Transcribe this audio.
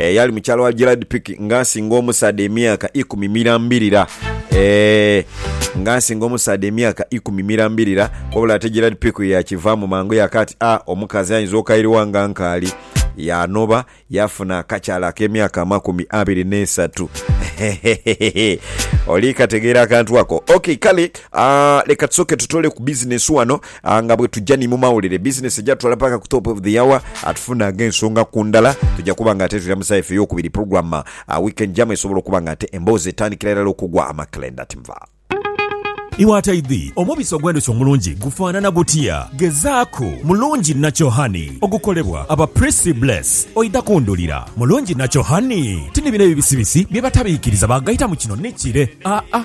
Eyali mukyala wa Gerard Pick nga asinga omusaadha emyaka ikumi mirambirira. Eeh, nga asinga omusaadha emyaka ikumi mirambirira. Wabula ate Gerard Pick yakivaamu mangu yaka ati, Ah, omukazi ayinza okairiwa nga nkaali. Yaanoba, yaafuna akakyala ak'emyaka amakumi abiri n'esatu. Hehehehe! Oli kategeera akantu ako? Ok, kale, ah, leka tusooke tutoole ku bizinesi wano. A Nga bwe tuja ni mu mawulire, bizinesi ejatutwala paka ku Top of the Hour, a tufunagho ensonga ku ndala. Tuja kuba nga ate tulamusa efe ey'okubiri pulogulaamu a wiikendi jamu esobola okuba nga ate emboozi etandikira irala okugwa amakelenda. Ati nva. Iwe ataidhi, omubisi ogw'endhuki omulungi gufaanana gutya? Gezaaku Mulungi Natural Honey ogukolebwa aba Prissy Bless, oidha kundhulira. Mulungi Natural Honey ti ni bino ebibisibisi bye batabiikiriza baagaitamu kino ni kire. Aa,